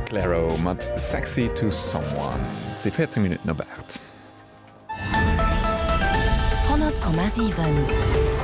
Clairo mat Sexy to someone. Et si 14 Minutten op 8. 100,7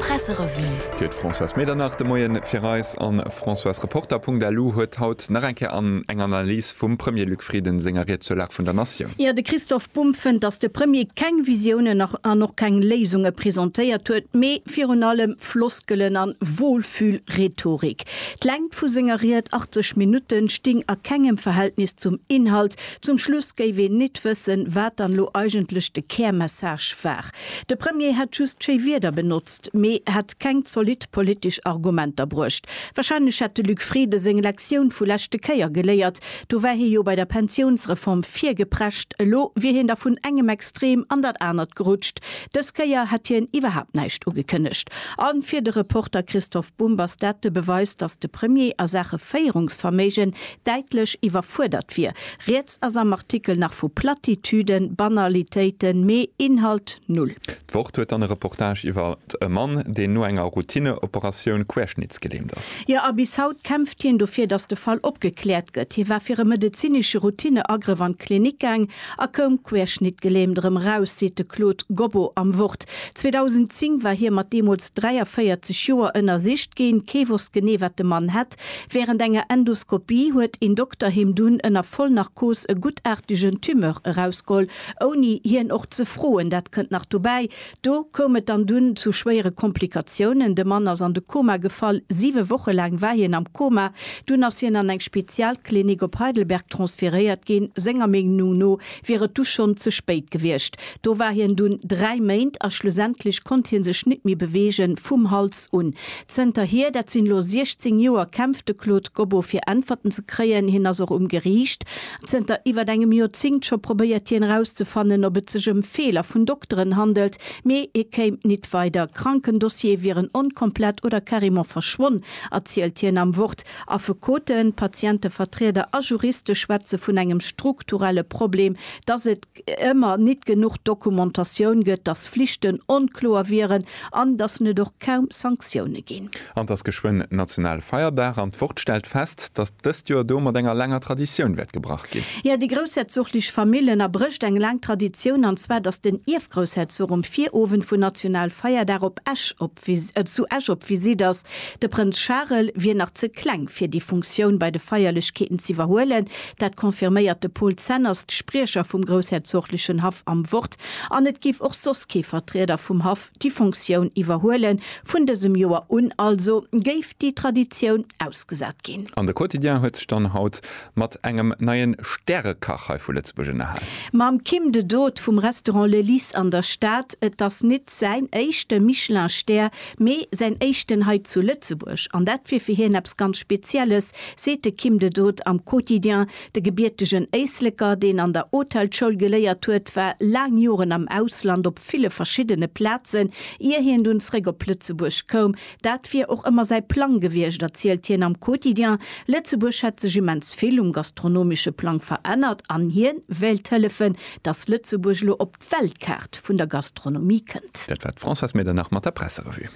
Presserevue. Dir huet d'Françoise Medernach de Moien fir eis an Françoise Reporter. Punkt LU huet haut nach eng Kéier an eng Analys vum Premier Luc Frieden senger Ried zur Lag vun der Natioun. Jo, de Christoph Bumb fënnt, datt de Premier keng Visiounen an och keng Léisunge presentéiert huet, mee Virun allem Floskelen an Wohlfühl-Rhetorik. D'Längt vu senger Ried, 80 Minutten, sting a kengem Verhältnis zum Inhalt. Zum Schluss géif een nit wëssen, wat dann lo eigentlech de Kärmessage war. De Premier hätt just schéi Wieder benotzt, mee hätt keng zolidd politesch Argumenter bruecht. Wahrscheinlech hätt de Luc Frieden seng Lektioun vu leschte Kéier geléiert. Do war hie jo bei der Pensiounsreform virgeprescht. Elo wier hien da vun engem Extrem an dat anert gerutscht. Dës Kéier hätt hien iwwerhaapt näischt ugekënnegt. A fir de Reporter Christoph Bumb ass dat de Beweis, datt de Premier a Saache Féierungsverméigen däitlech iwwerfuerdert wier. Rieds ass am Artikel nach vu Platitüden, Banalitéiten, mee Inhalt null. D'Wort huet dann e Reportage iwwer e Mann, deen no enger Routineoperatioun querschnittsgelähmt ass. Jo, a bis haut kämpft hien dofir, datt de Fall opgekläert gëtt. Hie war fir e medezinesche Routineagrëff an d'Klinik gaang A koum querschnittgelähmt erëm eraus, seet de Claude Gobbo am Wort. 2010 war hie mat deemools 43 Joer ënnersicht ginn. Kee wosst genee, wat de Mann hätt. Wärend enger Endoskopie huet een Dokter him dunn ënner Vollnarkos e guttartegen Tumeur erausgeholl, ouni hien och ze froen. Dat kënnt nach dobäi, Do koum et dann dunn zu schwéiere Komplikatiounen. De Mann ass an de Koma gefall. Siwe Woche laang war hien am Koma. Dunn ass hien an eng Spezialklinik op Heidelberg transferéiert ginn. Senger Meenung no wier et du schonn ze spéit gewiescht. Do war hien dunn dräi Méint a schlussendlech konnt hie sech nit méi beweege vum Hals un. Zënterhier, dat sinn elo 16 Joer, kämpft de Claude Gobbo fir Äntwerten ze kréien. Hien ass och um Geriicht. Zënter iwwert engem Joerzéngt scho probéiert hien erauszefannen, ob et sech ëm Feeler vun Dokteren handelt, mee hie kéim nit weider. Krankendossiere wieren onkomplett oder carrément verschwonn, erzielt hien am Wort. Affekoten, Patientevertrieder a Juriste schwätze vun engem strukturelle Problem, dass et. ëmmer nit genuch Dokumentatioun gëtt, dass Flichten onkloer wieren an dass et och kaum Sanktioune ginn. An et ass geschwënn national Feierdag an d'Wort stellt fest, dass dëst Joer do mat enger laanger Traditioun wäert gebrach ginn. Jo, déi groussherzoglich Famill ënnerbrécht eng laang Traditioun, an zwar dass den Ierfgroussherzog um Virowend vun national Feierdag op Esch op. zu Esch op Visitt ass. De Prënz Charel wier nach ze kleng, fir déi Funktioun bei de Feierlechkeeten z'iwwerhuelen. Dat confirméiert de Paul Zenners, de Spriecher vum groussherzoglechen Haff, am Wort. An et géif och soss kee Vertrieder vum Haff déi Funktioun iwwerhuelen. Vun dësem Joer un also géif déi Traditioun ausgesat ginn. An de Quotidien huet sech dann haut Mat engem neien Stärekach hei vu Lëtzebuerg ënnerhalen. Mam Kim de Dood vum Restaurant Le Lys an der Stad. Et ass nit säin éischte Michelin Stär, mee säin éischten hei zu Lëtzebuerg. An dat wier fir hien eppes ganz Spezielles, seet de Kim de Dood am Quotidien. De gebiertegen Éisleker, deen an der Hotelschoul geléiert huet, war laang Joren am Ausland op ville verschiddene Plazen, ier hien dunn zréck op Lëtzebuerg koum. Dat wier och ëmmer säi Plang gewiescht, erzielt hien am Quotidien. Lëtzebuerg hätt sech immens vill um gastronomesche Plang verännert an hien wéilt hëllefen, datt Lëtzebuerg elo op d'Weltkaart vun der Gastronomie kënnt. Dat war d'Françoise Medernach mat der Presserevue.